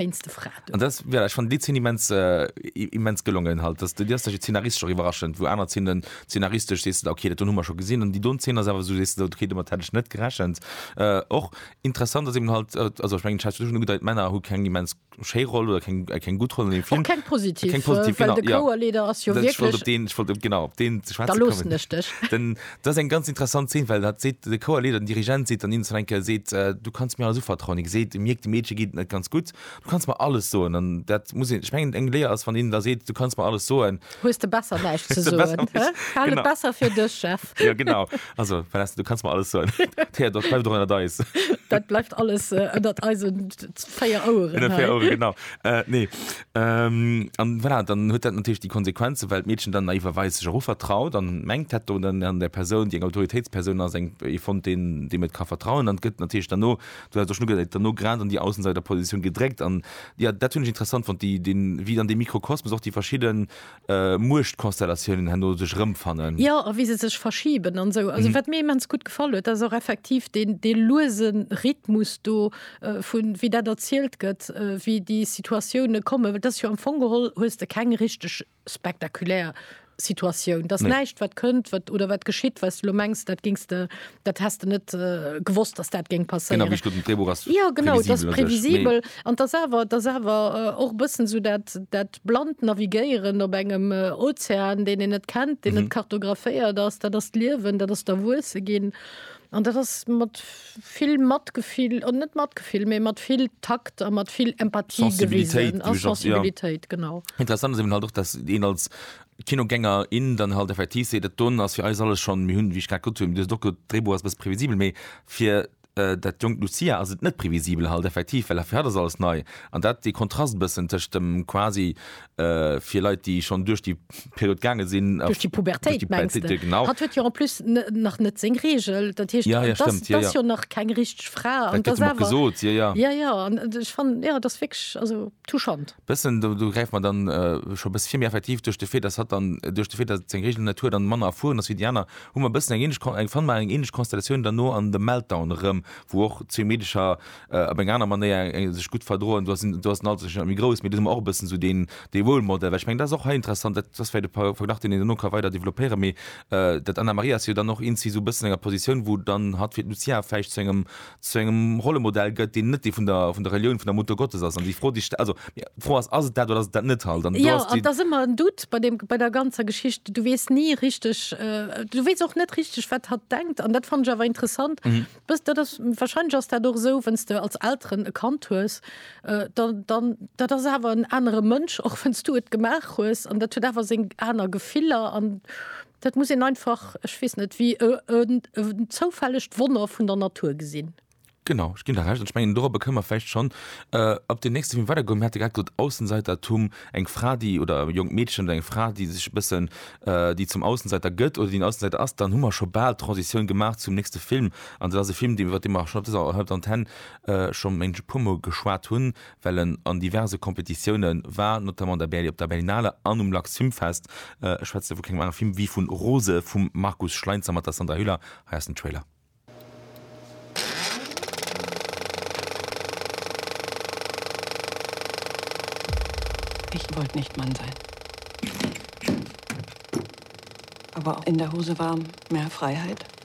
Wéinst de Fraten. An dat, voilà, ech fannen déi Zeen immens, immens gelongen halt. Dass, déi ass da zeenaristesch och iwwerraschend, wou aner Zeenen zeenaristesch sees de da, okay, dat hunn hu mer scho gesinn. An déi do Zeen ass awer esou, sees de do, okay, domat hätt ech net gerechent. Och interessant ass eben halt, also ech mengen, Chad, du hues scho ugedeit, d'Männer hu keng immens schéi Roll oder keng, keng gutt Roll an deem Film. Och keng positiv, keng positiv, well de Chouerleader ass jo wierklech. Ech wollt op deen, ech wollt op, genau, op deen ze schwätze kommen. Da loossen ech dech. Den, Dat ass eng ganz interessant Zeen, well dat seet de Chouerleeder, den Dirigent seet dann him zum Enke, seet, Du kanns mir alles uvertrauen. Hie geséit, e mierkt, de Meedche geet et net ganz gutt, Du kanns mer alles soen. An dat muss een, ech mengen, eng Léier ass, wann een da seet, Du kanns mer alles soen. Hues de besser näischt ze soen, hä? Hal et besser fir dech, Chef. Jo, genau. Also, Vanessa, du kanns mer alles soen. D'Héiert, dat bleift och ënnert eis. Dat bleift alles ënnert eisen véier Oueren hei. Ënnert véier Oueren, genau. Nee. An voilà, dann huet dat natierlech déi Konsequenzen, well d'Meedchen dann naiver Weis sech och uvertraut an mengt dat do dann an der Persoun, déi eng Autoritéitspersoun ass, eng ee fonnt deen deem et ka vertrauen an et gëtt natierlech derno, du haas et och schonn ugesäit, derno grad an déi Außenseiterpositioun gedréckt an jo, dat hunn ech interessant fonnt, déi deen, wéi dann dee Mikrokosmos och déi verschidden Muechtkonstellatiounen herno sech erëmfannen. Jo, a wéi se sech verschiben an esou. Also wat mir immens gutt gefall huet, dat ass och effektiv deen, dee luese Rhythmus do vu wéi dat erzielt gëtt, wéi déi Situatioune kommen. Well dat ass jo am Fong geholl hues de keng richteg spektakulär Situatioun. Dat ass näischt wat kënnt, wat oder wat geschitt, wat s de elo mengs, dat géings de Dat hast du net äh, gewosst, dass dat géng passéieren. Genau, wie Drehbuch hast ja, genau, das previsibel an das awer das awer och äh, bëssen so dat dat bland navigéieren op engem äh, Ozean, den en net kennt, den mhm. net kartograféiert ass, dat ass d'Liewen, dat ass der Wuesse ginn. An dat ass mat vill Matgefill an net matgefill, méi mat vill Takt a mat vill Empathie Sensibilitéit, gewesen, Sensibilitéit ja. genau. Interessant ist eben halt och, dass den als Kinogänger, in dann halt effektiv seet, et don ass fir eis alles schonn, mir hunn, wéi ech grad gesot hunn, wéi dir sot och gesot, d'Dréibuch ass e bësse previsibel, mee fir dat jonkt Lucia ass et net previsibel halt effektiv, well fir hatt ass alles nei an dat dee Kontrast e bëssen tëscht dem quasi fir Leit, déi schonn duerch déi Period gaange sinn, duerch déi Pubertéit, mengst de? Pubertéit, genau. Hatt huet jo en plus nach net seng Regel, dat heescht, Ja, ja, dass, stëmmt, dass jo nach keng richteg Fra Dat an gëtt dass him och awer, gesot, jo, jo. ja, ja, an ech fannen, jo, et ass wierklech, also, touchant. Bëssen, do gräife mer dann scho e bësse vir, mee effektiv duerch de Fait, dass hatt dann, duerch de Fait, dass et seng Regeln net huet an manner erfueren ass wéi déi aner, hu mer e bëssen eng ähnlech Kon, fanne mer eng ähnlech Konstellatioun dann no an The Meltdown erëm, wou och zwee Meedecher op eng aner Manéier sech gutt verdroen. Do ass den, do ass den Alter sicher net méi grouss, mee do hu mer och e bëssen esou deen, dee Role Model. Well ech mengen, dat ass och hei interessant, dat ass vläicht e Verglach, deen een duerno ka weider developpéieren, mee d'Anna-Maria ass jo dann och eent, si esou e bëssen an enger Positioun, wou dann hatt fir d'Lucia vläicht zu engem zu engem Rollemodell gëtt, deen net dee vun der, vun der Relioun, vun der Mutter Gottes ass. An déi Fro, déi ech sta-, also, mir, d'Fro ass, ass et dat oder ass et dat net halt? An do Jo, ass an déi. et ass ëmmer en Doute bei deem, bei der ganzer Geschicht. Du weess ni richteg, du weess och net richteg, wat hatt denkt. An dat fannen ech awer interessant, bës, dat ass, wahrscheinlech ass dat och esou, wénn s de als Elteren e Kand hues, da, dann, dat ass awer en anere Mënsch, och wénn s du et gemaach hues. An dat huet awer seng aner Gefiller an. Dat muss een einfach, ech weess net wéi, e zoufällegt Wonner vun der Natur gesinn. Genau, ech ginn der Recht. An ech mengen, dorobber kënne mer vläicht schonn op deen nächste Film weidergoen. Mir hate grad gesot, Aussenseitertum, eng Fra, déi, oder e jonkt Meedchen oder eng Fra, déi sech e bëssen, déi zum Aussenseiter gëtt oder déi en Aussenseiter ass. Dann hu mer scho bal d'Transitioun gemaach zum nächste Film. An dat ass e Film, dee iwwert dee mer schonn op dëser Antenne scho, mengen ech, e puermol geschwat hunn, well en an diverse Competitiounen war, notamment op der Berlinale an um Lux Film Fest. Ech schwätze vu kengem anere Film wéi vun Rose vum Markus Schleinzer mat der Sandra Hüller. Hei ass den Trailer. Ich wollt nicht Mann sein, aber in der Hose war mehr Freiheit.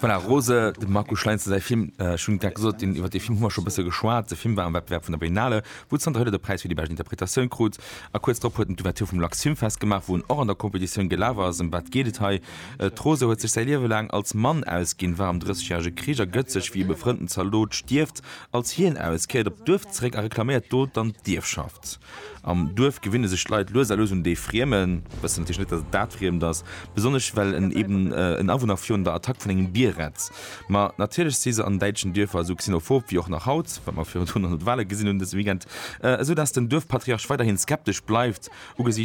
Voilà, Rose, dem Marco Schleinzer säi Film. Ech hunn grad gesot, deen, iwwer dee Film hu mer scho e bësse geschwat. De Film war am Wettbewerb vun der Berlinale, wou Sandra Hüller de Präis fir déi bescht Interpretatioun krut. A kuerz drop huet en d'Ouverture vum Lux Filmfest gemaach, wou en och an der Competitioun gelaf ass. Ëm wat geet et hei? D'Rose huet sech säi Liewe laang als Mann ausginn, war am Drëssegjärege Krich a gëtt sech, wéi e befrënnten Zaldot stierft, als hien aus, kéiert op d'Duerf zeréck a reklaméiert do dann d'Ierfschaft. Am Duerf gewinne sech d'Leit lues a lues un dee Friemen, wëssen natierlech net, datt et dat Friemt ass, besonnesch well en eben en Awunner virun der Attack vun engem Bier rett. Ma natierlech si se an däitschen Duerfer esou xenophob wéi och nach haut, wat mer virun 100 Wale gesinn hunn dëse Weekend, esou datt den Duerfpatriarch weiderhi skeptesch bleift, ugesiichts